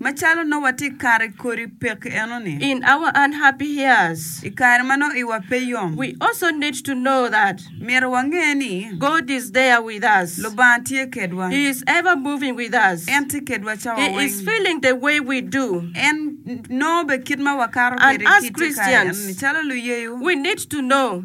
Macalo nongo watye i kare i kodi pekki enoni. In our unhappy years. I kare ma nongo iwa pe yom. We also need to know that. Myero wange ni. God is there with us. Lubanga tye kedwa. He is ever moving with us. En tye kedwa cawa weng. He is feeling the way we do. En nongo bene kit ma wakato kwede kit i kare enoni calo luyeyo. We need to know.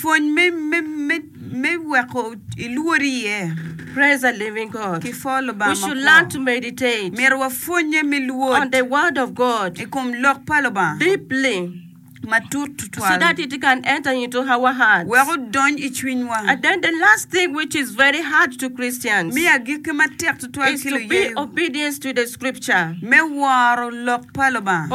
Pwony me Weko Ilwor Iye, Myero wapwonnye me lwod i kom Lok pa Lubanga matut tutwal wek odony i cwinywa. Mi agikki matek tutwal ki luyeyo me woro Lok pa Lubanga.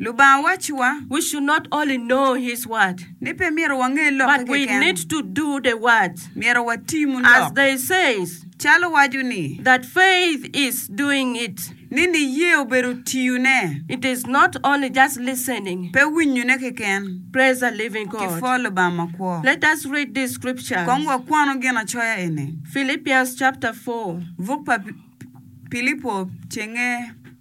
Lubanga wacci wa. We should not only know his word. Ni pe myero wange lokke keken. But we need to do the word. Myero watimu lok. As they says. Calo waco ni. That faith is doing it. Ni niyee obedo tiyo ne. It is not only just listening. Pe winyo ne keken. Praise the living God. Ki pwo Lubanga makwo. Let us read these scriptures. Kong wakwanu ginacoya eni. Philippians chapter four. Buk pa Pilipo cenge.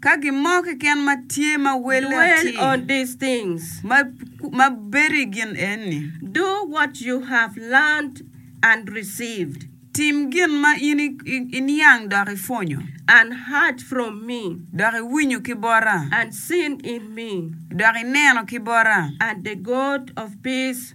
Ka gin mo keken ma tye ma welle atir. Dwell on these things. Ma, ma bedo i gin enni. Do what you have learned and received. Tim gin ma in iniang dok ipwonyo. And heard from me. Dok iwinyo ki bota. And seen in me. Dok ineno ki bota. And the God of peace.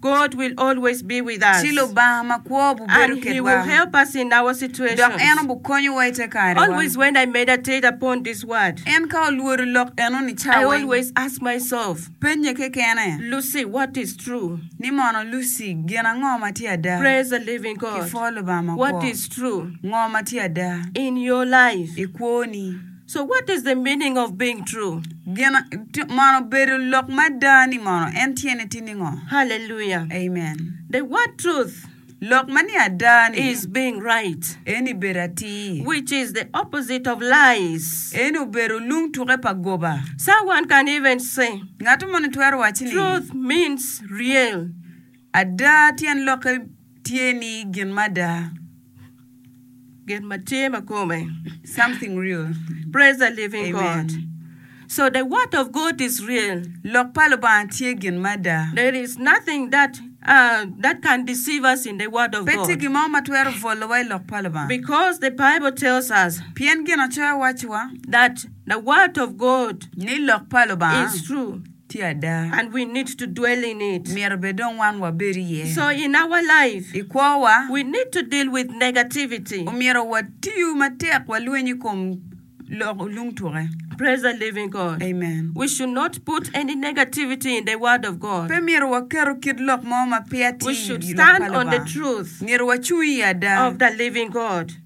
God will always be with us. Ci Lubanga makwo obubedo And He kedwa, will help us in our dok en situations. obukonyowa i te karewa. Always when I meditate upon this word, En ka olwodo lok enoni I cawa weng, always ask myself, pennye kekene Lucy, what is true? ni mono, Lucy, gin ango ma tye ada? Praise the living God. Kipwoo Lubanga What makwo. is true Ngo ma tye ada in your life? i kwoni? So what is the meaning of being true? Gin ti- mono bedo lok mada ni mono en tyene ti ningo? Hallelujah. Amen. The word truth Lok ma ni ada ni is being right, eni bedo atir. which is the opposite of lies. Eni obedo lung tuke pa goba. Someone can even say, Ngat moni twero waci ni Truth means real. ada tyen lokke tye ni gin mada. Gin ma tye ma kome. Something real. Praise the living Amen. God. So the word of God is real. Lok pa Lubanga tye gin mada. There is nothing that uh, that can deceive us in the word of Pe tye God. gin mo ma twero bwolowa i Lok pa Lubanga. Because the Bible tells us Pien Ginacoya wacciwa that the word of God ni Lok pa Lubanga is true. Tye ada. And we need to dwell in it. Myero bed dong wan wabed iye. So in our life. I kwowa. We need to deal with negativity. Omyero watiyu matek walweny i kom lok lung tuke. Praise the living God. Amen. We should not put any negativity in the word of God. Pe myero waketo kit lok mo ma peya tye i lok pa Lubanga. We should stand on the truth. Myero wacung i ada. Of the living God.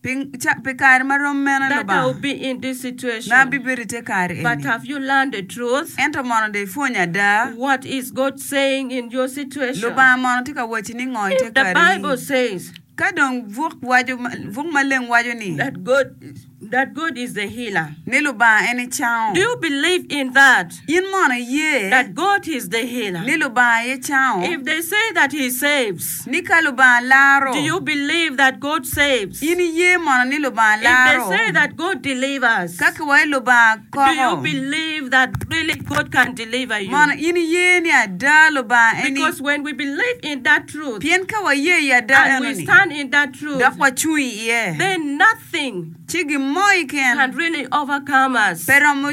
Pi kare ma rom mene Lubanga ma abibedo i te kare eni? Ento mono dong ipwony ada. Lubanga mono tye ka wacci ningo i te kare eni? Ka dong buk maleng waco ni ni Lubanga en nicango. In mono iye ni Lubanga aye cango? Ni ka Lubanga laro, in iye mono ni Lubanga laro? Ka kiwayo Lubanga koko, mono in iye ni ada Lubanga eni? Pien ka waye i ada enoni, dok wacung iye, ci gin mo keken pe romo.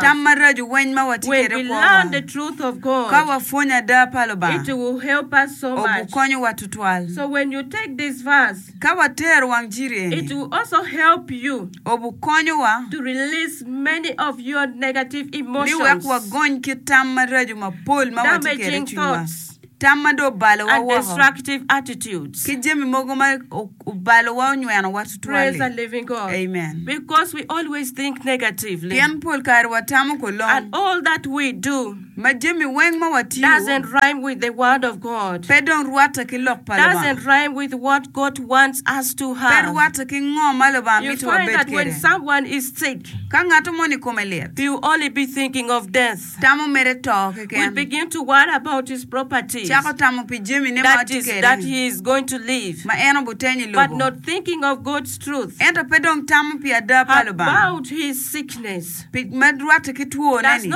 Tam maraco weng ma watye kwede kwo-wa. Ka wapwonyo ada pa Lubanga, obukonyowa tutwal. Ka watero wang ciri eni, obukonyowa ni wek wagony ki tam maraco mapol ma watye kwede i cwinywa. tam ma dong obalowa woko, destructive attitudes, ki jami mogo ma obalowa onywenowa tutwal-li. Amen. Pien pol kare watamo kolong, ma jami weng ma watiyo pe dong rwatte ki Lok pa Lubanga, pe rwatte ki ngo ma Lubanga mito wabed kwede. Ka ngatto moni kome lit, Tamo mere to keken. Cako tamo pi jami ne ma watye kwede, ma en obutenyo i lobo, ento pe dong tamo pi ada pa Lubanga, pi ma rwatte ki twone-ni.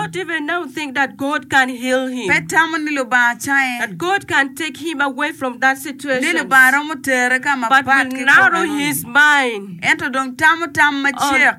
Pe tamo ni Lubanga cange, ni Lubanga romo tere ka mapat ki kwo meno-ni, ento dong tamo tam macek.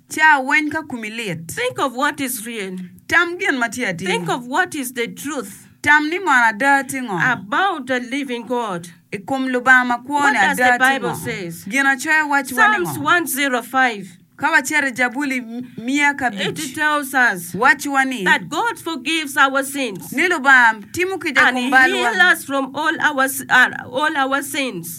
Ca weny ka kumi lit. Think of what is real. Tam gin ma tye atir. Think of what is the truth. Tam ni mono ada tye ngo. About the living God. I kom Lubanga ma kwo-ni ada tye ngo. What does the Bible says. Ginacoya wacci wa ni ngo. Psalms one zero five. Ka wacito i Jabuli miya ka abic. It tells us. Wacci wa ni. That God forgives our sins. Ni Lubanga timo kica i kom balwa. And he heal us from all our sins.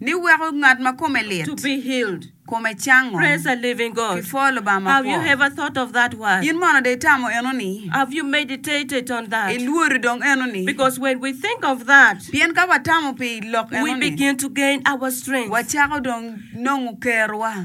Ni weko ngat ma kome lit kome cango. Pi pwo Lubanga mapwoo. In mono dong itamo enoni? Ilwori dong enoni? Pien ka watamo pi lok enoni, wacako dong nongo kerowa.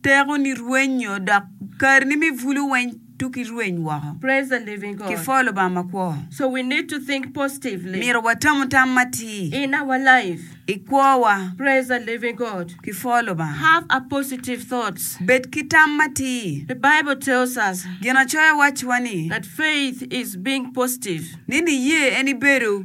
Teko ni rwenyo dok kare ni me bulu weny tuk irweny woko ki pho Lubanga makwo. Myero watamu tam matir i kwowa ki pho Lubanga. Bed ki tam matir. Ginacoya wacciwa ni niye en ibedo.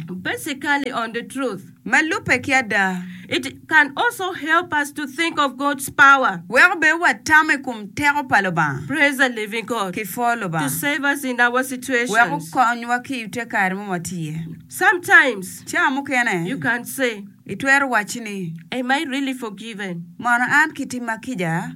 Basically on the truth. Ma lubbe ki ada, it can also help us to think of God's power. Weko bed watamo i kom teko pa Lubanga. Praise the living God. Ki pwo Lubanga. To save us in our situations. Weko okonywa ki i te kare ma watye. Sometimes. Ca mukene. You can say. Itwero wacci ni. Am I really forgiven? Mono an kitimma kica?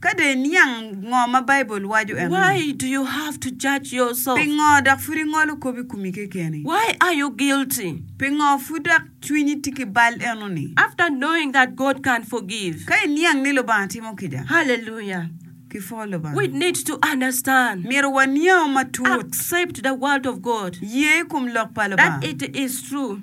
Ka dong iniang ngo ma Baibul waco eno-ni. Why do you have to judge yourself? Pingo dok pud ingolo kop i komi kekeni? Why are you guilty? Pingo pud dok cwinyi tye ki bal eno-ni? After knowing that God can forgive. Ka iniang ni Lubanga timo kica. Hallelujah! Ki pwo Lubanga. We need to understand. Myero waniang matut. Accept the word of God. Ye i kom lok pa Lubanga. That it is true.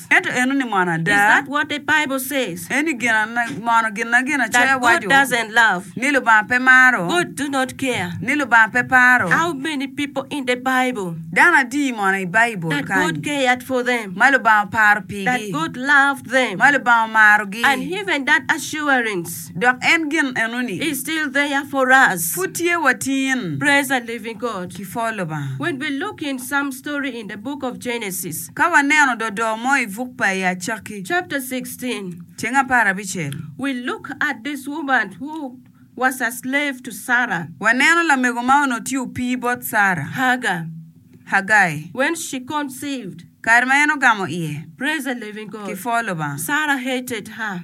Ento eno ni mono ada? Eni mono ginagin acoya waco ni Lubanga pe maro? Ni Lubanga pe paro? Dano adi mono i Baibul kany ma Lubanga oparo pigi, ma Lubanga omarogi? Dok en gin enoni pud tye watin. Kipwoo Lubanga! Ka waneno dodo mo i buk pa i Acakki. Chapter 16. Ceng apar abicel. We look at this woman who was a slave to Sarah. Waneno lamego ma onongo tye opii bot Sarah. Hagar. Hagai. When she conceived. Kare ma en ogamo iye. Praise the living God. Ki pwo Lubanga. Sarah hated her.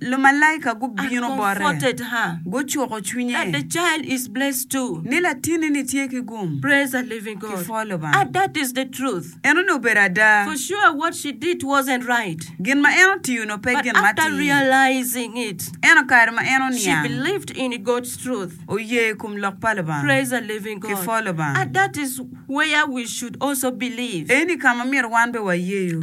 Lumalaika gubino bote, gucuko cwinye ni latinni tye ki gum ki pwo Lubanga. Enoni obedo ada. Gin ma en otiyo-nu pe gin matir. Ento kare ma en oniang, oye i kom lok pa Lubanga ki pwo Lubanga. Eni ka ma myero wan bene wayeyo.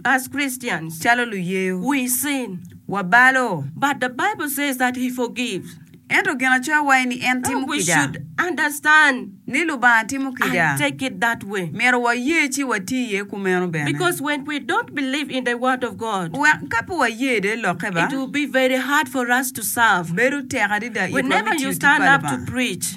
As Christians, calo luyeyo, we sin, wabalo. But the Bible says that He forgives. Ento Ginacoya waco ni en timo kica. We should understand. Ni Lubanga timo kica. And take it that way. Myero waye ci wati iye kumeno bene. Because when we don't believe in the Word of God. Wek ka pe waye de Lokke ba. It will be very hard for us to serve. Bedo tek adida itwa me tiyo tic pa Lubanga. Whenever you stand up to preach.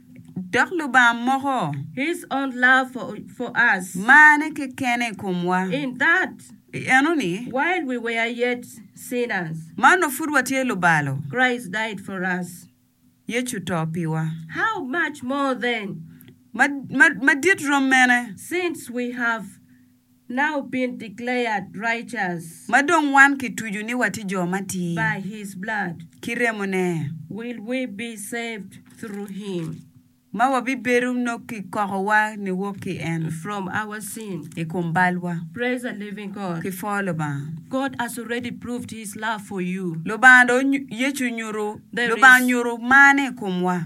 dok Lubanga moko. His own love for, for us. Marne kekene i komwa. In that. I enoni. While we were yet sinners. Ma onongo pud watye lubalo. Christ died for us. Yecu oto piwa. How much more then. Ma, ma, madit rom mene. Since we have. Now been declared righteous. Ma dong wan kitucu ni watye jo matir. By his blood. Ki remone. Will we be saved through him. Ma wabibedo nongo kikokowa niwok ki en. From our sin. I kom balwa. Praise the living God. Ki pwo Lubanga. God has already proved his love for you. Lubanga dong Yecu onyuto, Lubanga onyuto marne i komwa.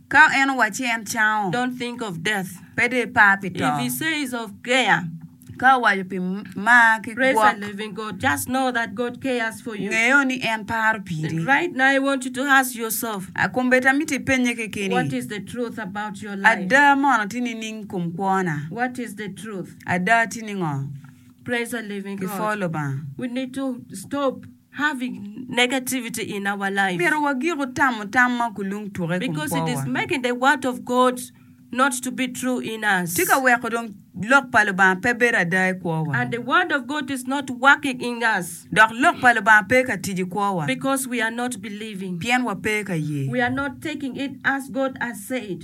Ka en owacci en cango. Don't think of death. Pe dong ipar pi to. If he says of care. Ka owaco pi mar ki gwok. Praise the living God. Just know that God cares for you. Ngeyo ni en paro piri. And right now I want you to ask yourself. Kombeddi amito ipenye kekeni. What is the truth about your life? Ada mono tye nining kom kwona? What is the truth? Ada tye ningo? Praise the living God. Kipwoo Lubanga. We need to stop. Having negativity in our life. Myero wagiko tamo tam ma kulung tuke i kom Because it is kwowa. making the word of God not to be true in us. Tye ka weko dong Lok pa Lubanga pe bedo ada i kwowa. And the word of God is not working in us. Dok Lok pa Lubanga pe ka tic i kwowa. Because we are not believing. Pien wape ka ye. We are not taking it as God has said.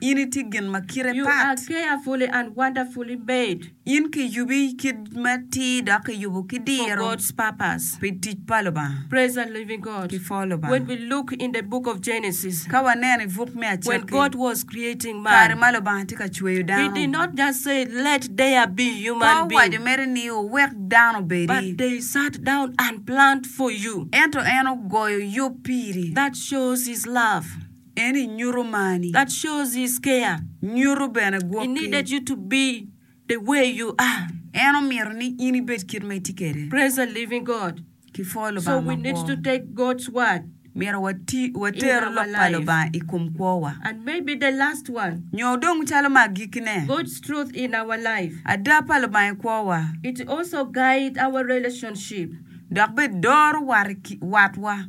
In itye gin ma kite pat. You are carefully and wonderfully made. In kiyubi kit matir dok kiyubo ki diro. For God's purpose. Pi tic pa Lubanga. Praise the living God. Ki pho Lubanga. When we look in the book of Genesis. Ka waneno i buk me Acakki. When God was creating man. Kare ma Lubanga tye ka cweyo dano. He did not just say let there be human being. Pe owaco mere ni owek dano obedi. But they sat down and planned for you. Ento en ogoyo yub piri. That shows his love. En i nyuto marni. That shows his care, nyuto bene gwokki. He needed you to be the way you are. En omito ni in ibed kit ma itye kwede. Praise the living God. Kipwoyo Lubanga makwo. So we need to take God's word. Myero water lok pa Lubanga i kom kwowa. And maybe the last one. Nyo dong calo ma agikkine. God's truth in our life. Ada pa Lubanga i kwowa. It also guide our relationship. Dok bene doro watwa.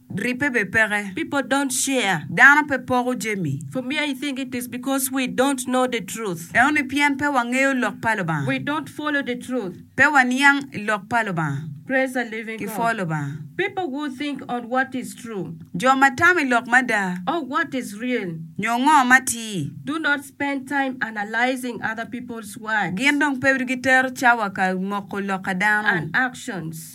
Ribbe be peke. People don't share. Dano pe poko jami. For me I think it is because we don't know the truth. Enoni pien pe wangeyo lok pa Lubanga. We don't follow the truth. Pe waniang i lok pa Lubanga. Praise the living God. Ki pwo Lubanga. People who think on what is true. Jo ma tamo i lok mada. Or what is real. Nyo ngo ma tir. Do not spend time analyzing other people's words. Gin dong pe gitero cawa ka moko lok a dano. And actions.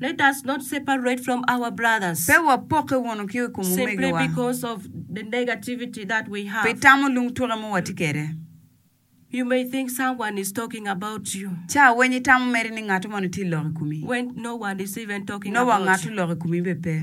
Let us not separate from our brothers. Pe wapokke wunu ki i kom omegiwa. Simply because of the negativity that we have. Pi tamo lung tuke ma watye kwede. You may think someone is talking about you. Ca weny itamo meri ni ngatu moni tye lok i komi. When no one is even talking about you. Nowa ngatu lok i komi bene pe.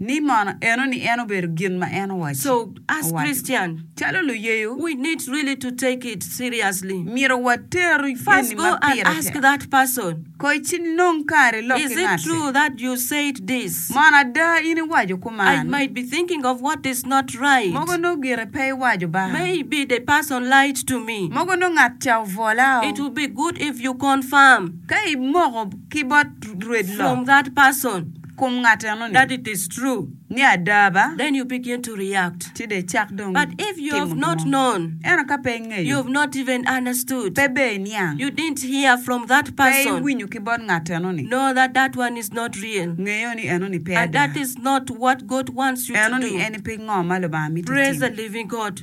ni mono enoni en obedo gin ma en owaco. Calo luyeyo, myero water geni ma pire tek. Koy ci nong kare lok ki ngatti. Mono ada in iwaco kuman? Mogo nongo gire pe iwaco ba. Mogo nongo ngat ca obwola o. Ka imoko ki bot rwed lok. Kum ngat eno ni. That it is true. Ni ada ba. Then you begin to react. Ci de icak dong. But if you have not known. Ento ka pe ingeyo. You have not even understood. Pe be iniang. You didn't hear from that person. Pe iwinyo ki bot ngat eno ni. Know that that one is not real. Ngeyo ni eno ni pe ada. And that is not what God wants you to do. Eno ni en pingo ma Lubanga mito itimo. Praise the living God.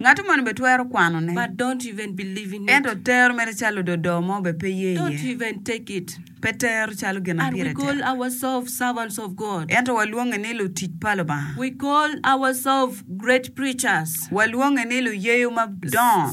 Ngatu moni be twero kwano ne. Ento tero mere calo ododo mo be pe ye iye. Pe tero calo gin ma pire tek. Ento wa lwonge ni lutic pa Lubanga. Wa lwonge ni luyeyo ma dongo.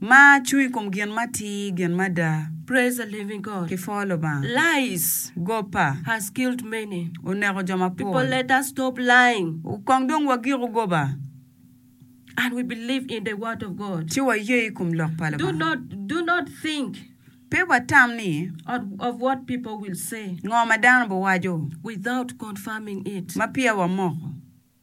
Ma cung i kom gin ma ti, gin mada. Praise the living God. Ki pho Lubanga. Lies. Gopa. Has killed many. Oneko jo mapol. People let us stop lying. Kong dong wagiko goba. And we believe in the word of God. Ci waye i kom lok pa Do Lubanga. not do not think Pe watam ni of, of what people will say ngo ma dano biwaco without confirming it. ma peya wamoko.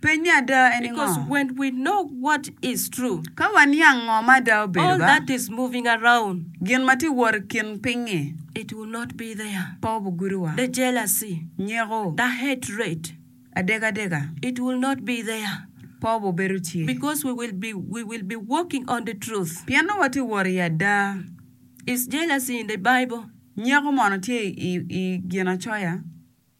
Pennye ada en i ngo? Because when we know what is true. Ka waniang ngo ma ada obedo ba. All that is moving around. Gin ma tye wot i kin piny-ngi. It will not be there. Pe obugudo wa. The jealousy. Nyeko. The hatred. Adega adega. It will not be there. Pe obubedo tye. Because we will be we will be walking on the truth. Pien nongo watye wot i ada. Is jealousy in the Bible? Nyeko mono tye i i Ginacoya?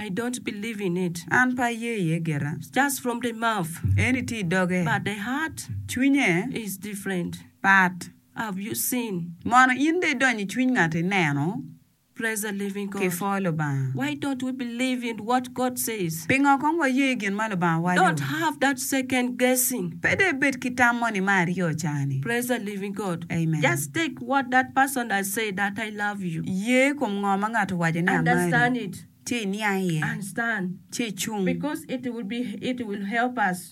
I don't believe in it an pe aye iye gita. Just from the mouth. Eni tye i doge. But the heart. Cwinye. Is different. Pat. Have you seen. Mono in dong idonyo i cwiny ngat ineno. Praise the living God. Ki pwo Lubanga. Why don't we believe in what God says. Pingo kong waye i gin ma Lubanga waco. Don't have that second guessing. Pe dong ibed ki tam mo ni me aryo oca ni. Praise the living God. Amen. Just take. What that person I say that I love you. Ye kom ngo ma ngat owaco ni amari, ci iniang iye, ci icung.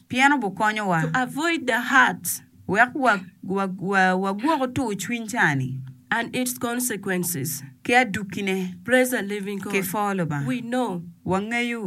Pien obukonyowa. Wek wagwoko tur cwiny cani. Ki adukkine. Ki foo Lubanga. Wangeyo.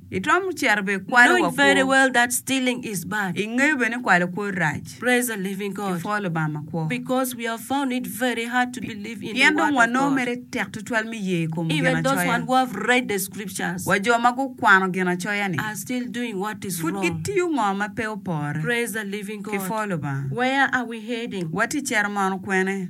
Itwero cito bene ikwalo wa kwo. Ingeyo bene ni kwalo kwo rac. Ipwoo Lubanga makwo. Pien dong wanongo mere tek tutwal me ye i kom Ginacoya. Wa jo ma gukwano Ginacoya-ni pud gitiyo ngo ma pe opore? Kipwoo Lubanga. Watye cito mono kwene?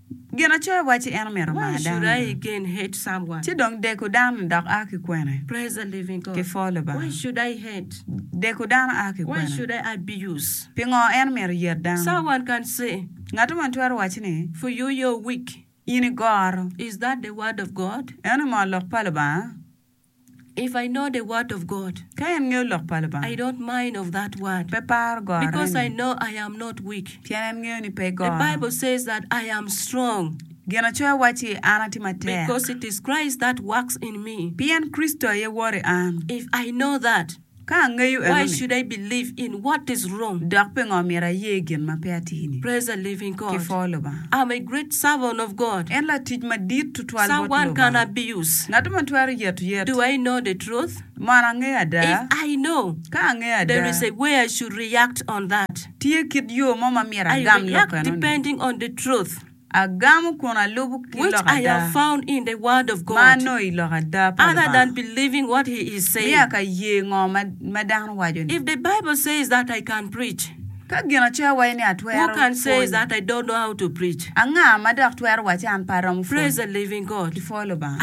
Gin acoya wacci en omito mar dano, ci dong deko dano dok a ki kwene? Ki pwo Lubanga. Deko dano a ki kwene? Pingo en omito yet dano? Ngat moni twero wacci ni, In igoro. Eno ni moo lok pa Lubanga? If I know the word of God. Ka en ngeyo lok pa Lubanga. I don't mind of that word. Pe paro gore ni. Because I know I am not weak. Pien en ngeyo ni pe goro. The Bible says that I am strong. Ginacoya wacci, An atye matek. Because it is Christ that works in me. Pien Kricito aye woro i an. If I know that. Ka angeyo enoni, dok pingo myero aye gin ma pe atye-ni? Ki pho Lubanga! En latic madit tutwal bot Lubanga. Ngat mo twero yeto yet? Mono angeyo ada? Ka angeyo ada, tye kit yo mo ma myero agam lok enoni? Agamo kun alubo ki lok ada ma anongo i lok ada pa Lubanga. Miyo aka ye ngo ma dano waco-ni. Ka Ginacoya waco ni atwero pwony, anga ma dok twero wacci an pe aromo pwony? Kipwoo Lubanga.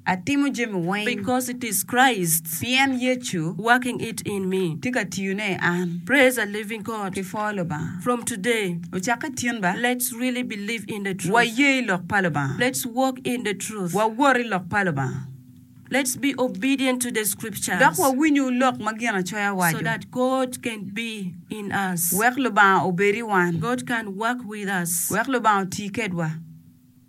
Atimo jami weng. Because it is Christ. Pien Yecu. Working it in me. Tye ka tiyone i an. Praise a living God. Ki pho Lubanga. From today. Ocakke tin ba. Let's really believe in the truth. Wa ye i lok pa Lubanga. Let's walk in the truth. Wa wot i lok pa Lubanga. Let's be obedient to the scriptures. Dok wa winyu lok ma Ginacoya waco. So that God can be in us. Wek Lubanga obed i wan. God can work with us. Wek Lubanga oti kedwa.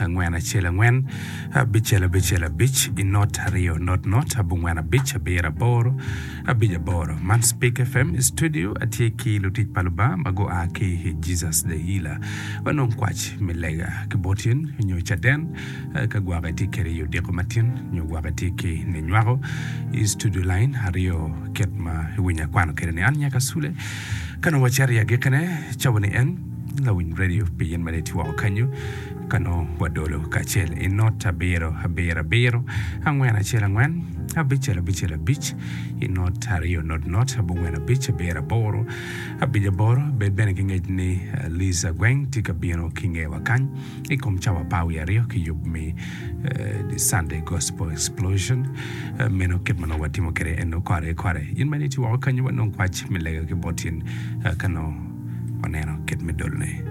angwen acel angwen abicel abicel abic i not aryo not not abongwen abic abiro aboro abic aboro man speak fm i studio atye ki lutic pa lubanga ma gua ki i jesus the healer wanong kwac me lega ki botyen nyo caden eh, ka gwaka itye kede i odiko matin nyo gwaka itye ki ni nywako i studio line aryo kit ma iwinyo akwano kede ni an nyaka sule ka nongo wacito i agikine cawa ni en Lawiny Radio pi in ma niti woko kenyu ka nongo wadolo kacel i not abiro abiro abiro angwen acel angwen abicel abicel abic i not aryo not not abongwen abic abiro aboro abic aboro bed bene ki ngec ni Liza Gweng tye ka bino ki ngewa kany I kom cawa par wiye aryo ki yub me The Sunday Gospel Explosion, meno kit ma nongo watimo kwede eno kore kore. In bene iti woko kenyu wanong kwac me lega ki bot in ka nongo waneno kit me dolone.